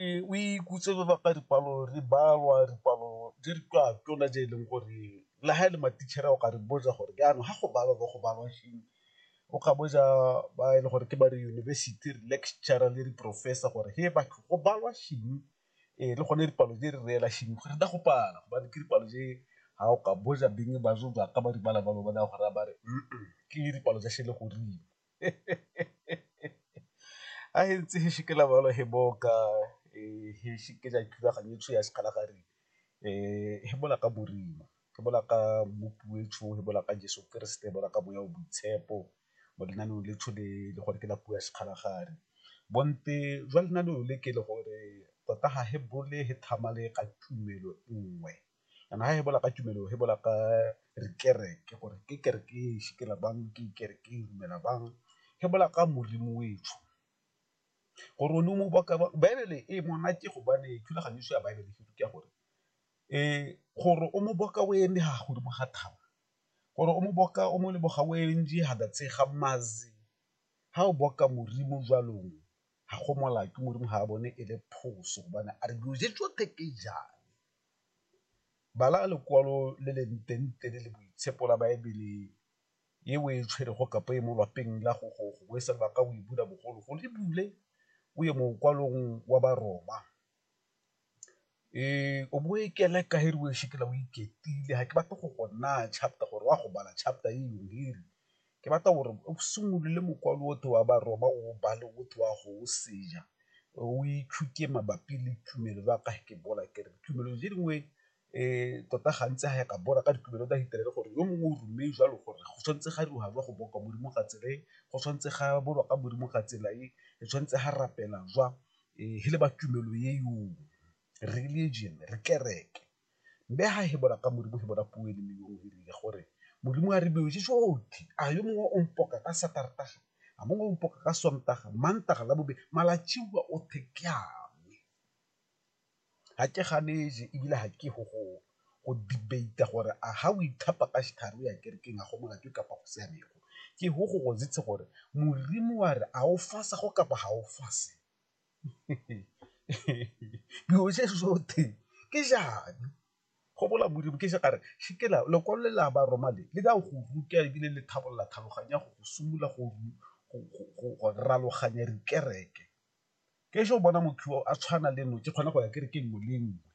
Ee, o ikutse re baka dipalo re balwa dipalo di re ka tsona tse e leng gore le ha e le matitšhere o ka re botsa gore jaanong ga go balwa bo go balwa eng, o ka botsa ba e le gore ke ba re yunibesithi re lecturer le di-professor gore he batho go balwa eng le gone dipalo di re reela eng go feta go pala gobane ke dipalo tse ga o ka botsa beng ba ka ba di bala ba go raya ba re ke dipalo tsa sele goreng. a e ntse e shikela balo he boka he shikela thulaganyo tsho ya sekgala gare he bola ka borima ke bola ka mmopi o etsho he bola ka Jeso Keresete bola ka boya o boitshepo mo lenaneong le tsho le le gore ke la puo ya sekgala gare bonte jwa lenaneo le ke le gore tota ga he bole he tlhamale ka tumelo nngwe. Jaanong ga re bolela ka tumelo re bolela ka dikereke gore ke kereke e sepela bang, ke kereke e dumela bang, re bolela ka Modimo o etsho. Gore o ne o mo baka bang, Baebele e monate gobane thulaganyo ya Baebele e ruta gore gore o mo boka o eme fa godimo ga thaba, gore o mo boka o mo leboga o eme fa fatshe ga maru, fa o boka Modimo jalo ga go molato, Modimo ga a bone e le phoso gobane a re dilo tse tsotlhe ke . Bala lekwalo le le ntenete le le boitshepo la Baebele e o e tshwerego kapa e mo lwapeng la gogo gongwe se lebaka o e bula bogologolo e bule o ye mokwalong wa Baroma. O bo o e keleka e re o e shekela o iketlile, ga ke batle go go naya chapter gore o a go bala chapter e . ke batla gore o simolole mokwalo otlhe wa baroma o o bale o tle wa go o senya, o itshuke mabapi le tumelo ya ka ke bola ke re tumelo tse dingwe tota gantsi ga ya ka bola ka ditumelo tsa Kereite gore yo mongwe o ruile jalo gore go tshwanetse ga dira jwa go boa kwa Modimo ka tsela e, go tshwanetse ga boa ka Modimo ka tsela e, re tshwanetse ga rapela jwa, e le ba tumelo e religion, kereke. Mme ha hebola ka Modimo, hebola puo e le nngwe yo o rile gore, Modimo a re beo je jotlhe, a yo mongwe o mpoka ka Satartaga, a mongwe o mpoka ka Sontaga, Mantaga, Labobedi, malatsiwa othe ke a me. Ga ke ganeje ebile ga ke go go go debate-a gore a ga o ithapa ka setlhare o ya kerekeng a go molato kapa go siamego, ke go go gore Modimo wa re a o fasa go kapa ga o fase. dilo se sotlhe ke jane go bola modimo ke se kare sekela lekwalo le la ba roma le le ka go ruta ebile le tlhabolola tlhaloganya go go simolola go raloganya dikereke. Ke ese o bona motho yo a tshwana le nno ke kgona go ya ke re ke nngwe le nngwe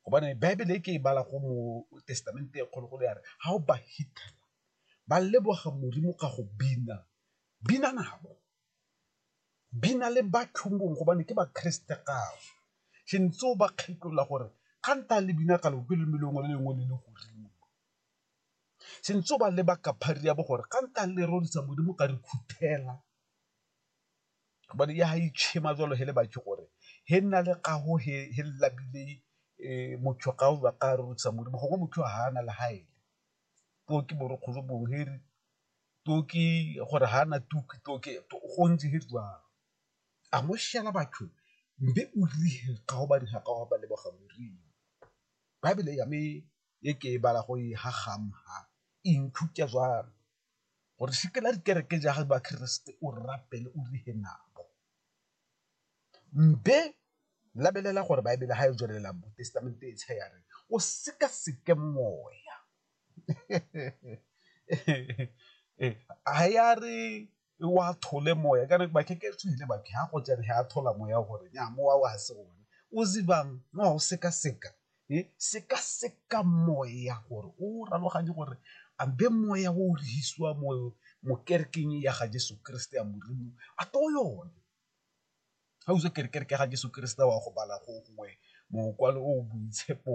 gobane baebele e ke e bala go mo testamente e kgolo-kgolo ya re ga o ba fitlhela ba leboga modimo ka go bina, bina nabo di na le bathong gobane ke bakreste gabo se ntse o ba kgetlola gore ga nta le bina ka lope le melongwe le lengwe le le godimo se ntse o ba leba ka phari ya bo gore ga nta le rorisa modimo ka re khuthela gobane ya ga itšhema jalo he le batho gore he nna le gago he labile um motho ga o ba ka rorisa modimo gongwe motho ga ana le gaele poo ke borokgolo bongwe he re toki gore ga na toki toki go ntse go jalo a mo shela batho mbe o rile ga go ba dira ka go ba leboga moriri bible ya me e ke e bala go e ha gama ha e nthuta jalo gore se ke la dikereke ja ga ba keresete o rapele o rile nabo mbe labelela gore bible ga e tswelela bo testamente e tshe ya re o seka seke moya ha ya re wa thole moya kana ba ke ke tswile ba ke ha go tsene ha thola moya gore nya mowa wa se one o zibang no o seka seka e seka seka moya gore o raloganye gore a be moya o rehisiwa mo mo kerking ya ga Jesu Kriste ya Modimo a to yone Ga o itse kerekeng ke ga Jeso Keresete wa go bala gongwe mokwalo o boitshepo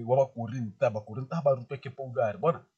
wa ba Korinte, ba Korinte ga ba rutwa ke Paulo a re bona